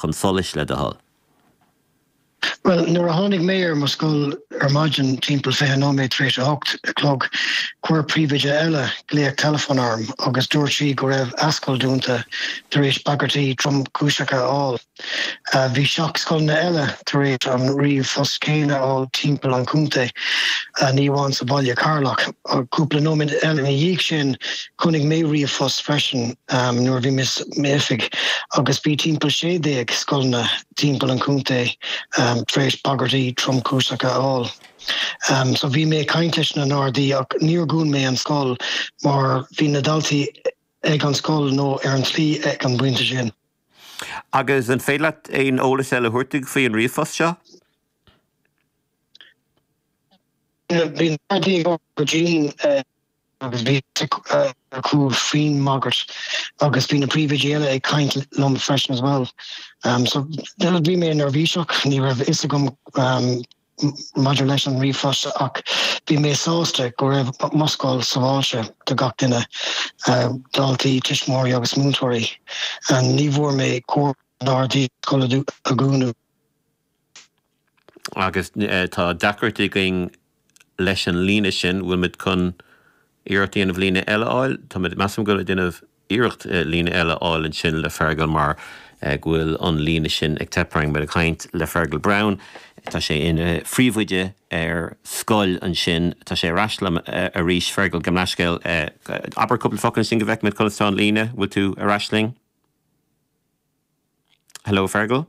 chun solais, le do thoil? Bhuel, nuair a tháinig mé ar mo scoil ar maidin, timpeall fiche nóiméad tar éis a hocht a chlog, chuir príomhoide eile glaoch teileafóin orm agus dúirt sí go raibh a scoil dúnta tar éis bagairtí tromchúiseacha a fháil. Bhí seacht scoileanna eile tar éis an ríomhphost céanna a fháil timpeall an chontae, ní amháin sa bhaile Cheatharlach. Cúpla nóiméad eile ina dhiaidh sin, Chonaic mé ríomhphost freisin nuair a bhí mé sa m'oifig agus bhí timpeall sé déag scoileanna timpeall an chontae tar éis bagairtí tromchúiseacha a fháil. So bhí mé ag caint leis na nGardaí ach níor dhún mé an scoil mar bhí na daltaí ag an scoil nó ar an tslí ag an bpointe sin. Agus an féidir leat aon eolas eile a thabhairt dúinn faoi an ríomhphost seo? Bhí na Gardaí ag obair go dian. agus bhí sé ar cúl faoin mbagairt agus bhí na príomhoidí eile ag caint liom freisin as well so nuair a bhí mé neirbhíseach ní raibh fhios agam maidir leis an ríomhphost ach bhí mé sásta go raibh mo scoil sábháilte do gach duine, daltaí, tuismitheoirí agus múinteoirí. Ní bhfuair mé comhairle ár dtús an scoil a dhúnadh. agus tá deacrachtaí againn leis an líne sin, bhfuil muid chun iarracht a dhéanamh líne eile a fháil? Tá muid, measaim go bhfuil ag déanamh iarracht líne eile a fháil ansin le Fergal mar go bhfuil an líne sin ag teip orainn. Muid ag caint le Fergal Browne, tá sé ina phríomhoide ar scoil ansin, tá sé ar ais linn arís. Fergal, gabh mo leithscéal, abair cúpla focal ansin go bhfeicfidh muid conas atá an líne, bhfuil tú ar ais linn? Hello Fergal?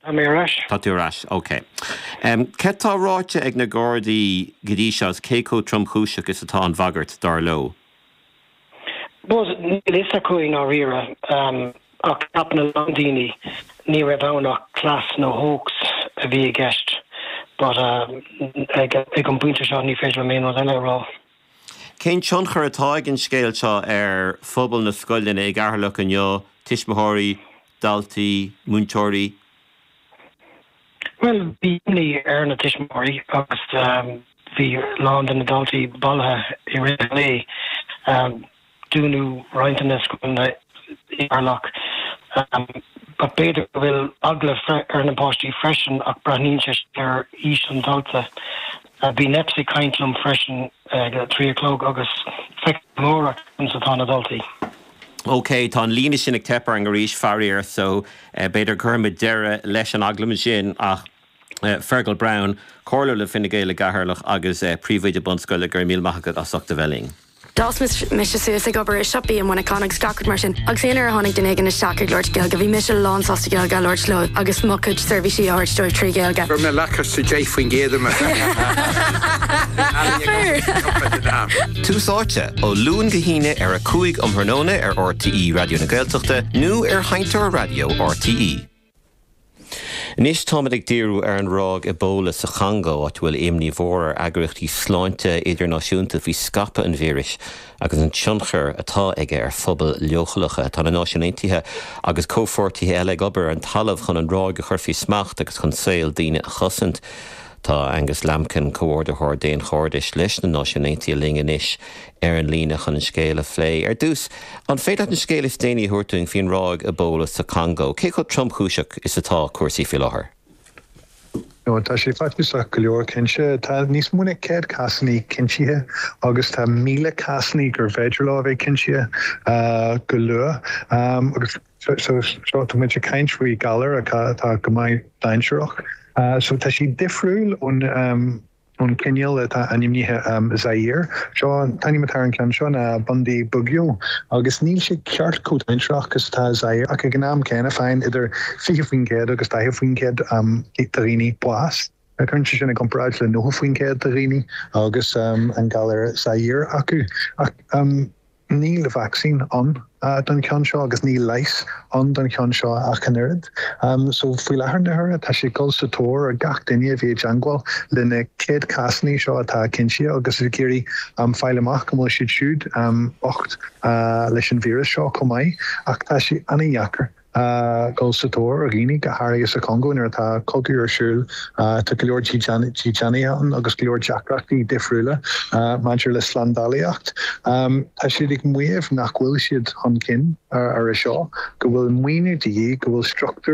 Tá mé ar ais. Tá tú ar ais. Ok. Cad tá ráite ag na Gardaí go dtí seo is cé chomh tromchúiseach is atá an bhagairt, dar leo? Bhuel, níl a fhios acu i ndáiríre. Ach ceapann a lán daoine ní raibh ann ach cleas nó hoax a bhí i gceist. But ag an bpointe seo ní féidir liom aon rud eile a rá. Cén tionchar atá ag an scéal seo ar phobal na scoileanna i gCeatharlach inniu, tuismitheoirí, daltaí, múinteoirí? Bhuel, bhí imní ar na tuismitheoirí agus bhí a lán de na daltaí bailithe i rith an lae. Dúnadh roinnt de na scoileanna i gCeatharlach but b'fhéidir go bhfuil eagla ar na páistí freisin ach braitheann sé sin ar aois an dalta. Bhí NEPS ag caint liom freisin ag a trí a chlog agus feicfimid amárach conas atá na daltaí. OK, tá an líne sin ag teipeadh orainn arís, faraor, so b'fhéidir cuirfimid deireadh leis an agallamh sin ach Fergal Browne, Comhairleoir le Fine Gael i gCeatharlach agus Príomhoide Bunscoile, go raibh míle maith agat as ucht a bheith linn. D'fhás mise suas ag obair i siopaí i Muineachán agus gach rud mar sin agus aon uair a tháinig duine éigin isteach ag labhairt Gaeilge bhí mise lán sásta Gaeilge a labhairt leo agus mo chuid seirbhísí a thabhairt dóibh trí Ghaeilge. Deich faoin gcéad Tús Áite, ó Luan go hAoine ar a 5 um thráthnóna ar RTÉ Raidió na Gaeltachta nó ar sheinnteoir raidió RTÉ. Anois táimid ag díriú ar an ráig Ebola sa Chongó, áit a bhfuil imní mhór ar eagraíochtaí sláinte idirnáisiúnta faoi scaipeadh an víris agus an tionchar atá aige ar phobail leochaileacha. Tá na Náisiúin Aontaithe agus comhpháirtithe eile ag obair ar an talamh chun an ráig a chur faoi smacht agus chun saol daoine a chosaint. Tá Angus Lambkin, Comhordaitheoir Daonchairdeasa leis na Náisiúin Aontaithe linn anois ar an líne chun an scéal a phlé. Ar dtús, an féidir leat an scéal is déanaí a thabhairt dúinn faoin ráig Ebola sa Congó? Cé chomh tromchúiseach is atá cúrsaí faoi láthair? Bhuel, tá sé faitíosach go leor, cinnte. Tá níos mó ná céad cásanna cinntithe agus tá míle cásanna gur féidir leo a bheith cinntithe go luath. So, seo tá muid ag caint faoi galar atá go maith dainséarach. So tá sé difriúil ón ón cineál atá ainmnithe Zaire. Seo an t-ainm atá ar an ceann seo ná Bundibugyo agus níl sé ceart chomh dainséarach is atá Zaire ach ag an am céanna faigheann idir 20% agus 40% de dhaoine bás. Cuir é sin i gcomparáid le 90% de dhaoine agus an galar Zaire acu. Ach. Níl vacsaín ann don cheann seo agus níl leigheas ann don cheann seo ach an oiread. So faoi láthair na huaire tá siad ag dul sa tóir ar gach duine a bhí i dteangmháil le na céad cásannaí seo atá cinnte agus ag iarraidh fáil amach an bhfuil siad siúd bocht leis an víreas seo chomh maith ach tá sé an-dheacair. a dhul sa tóir ar dhaoine, go háirithe sa Chongó nuair atá cogadh ar siúl. Tá go leor dídeanaithe ann agus go leor deacrachtaí difriúla maidir le slándálaíocht. Tá siad ag maíomh nach bhfuil siad chun cinn ar a seo, go bhfuil maoiniú de dhíth, go bhfuil struchtúir